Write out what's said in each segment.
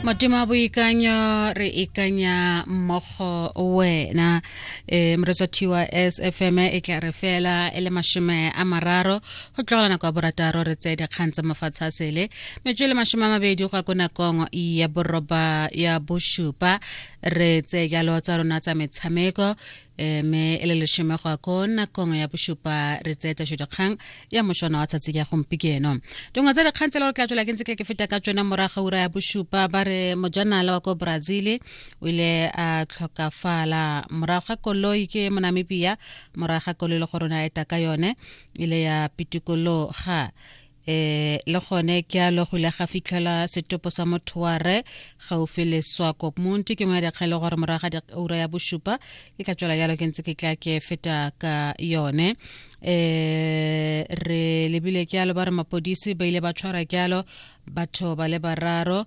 motema boikanyo re ikanya mmogo wena um moretsa thiwa s f m e tla re fela e le mashome a mararo go tlogela nako ya borataro re tseye dikgang tsa mafatshe a sele metswe le mashome a mabedi go ya ko nakong ya boroba ya bosupa re tseye jalo tsa rona tsa metshameko eh, me e le leshome go ko nakong ya bošupa re tseye tašo dikgang ya mošwana wa tsatsi ya gompikeno dingwe tsa dikgang tsela re tla tswela ke ntse ke feta ka tsone morago ura ya bošupa ba re mojanala wa ko brazil o ile a tlhokafala morago ga koloi ke monamibia morago ga koloi le go rona eta ka yone ile ya pitikologa eh le gone ke a logile ga fitlhela setopo sa motho wa re gaufi le swako monti ke ngwe ya dikgele gore morago ga ura ya bosupa e tla tswela jalo ke ntse ke tla ke feta ka yone eh re lebile ke alo ba re mapodisi ba ile ba tshwara ke alo batho ba le bararo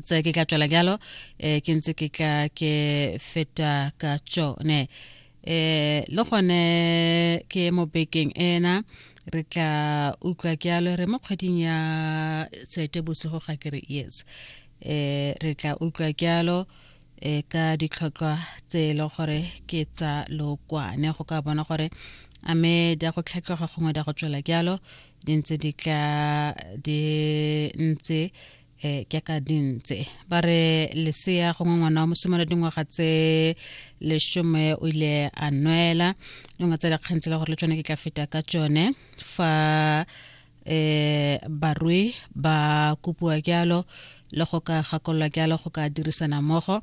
tse ke ka tswela jalo um eh, ke ntse ke tla ke feta ka tsone um le gone ke mo bekeng ena re tla utlwa ke alo re mo kgweding ya tsete bosigo ga ke re yes um re tla utlwa ke alo e ka ditlhotlhwa tse e le gore ke tsa lokwane go ka bona gore a me di a go tlhatlhoga gongwe di a go tswela jalo di ntse di tla di ntse um ke ka dintse ba re lesea gongwe ngwana wa mosimolo dingwaga tse lesome o ile a nwela dingwe tsa dikgang tse le gore le tsone ke tla feta ka tsone fa eh barui ba kopiwa jalo le go ka gakololwa jalo go ka dirisana mmogo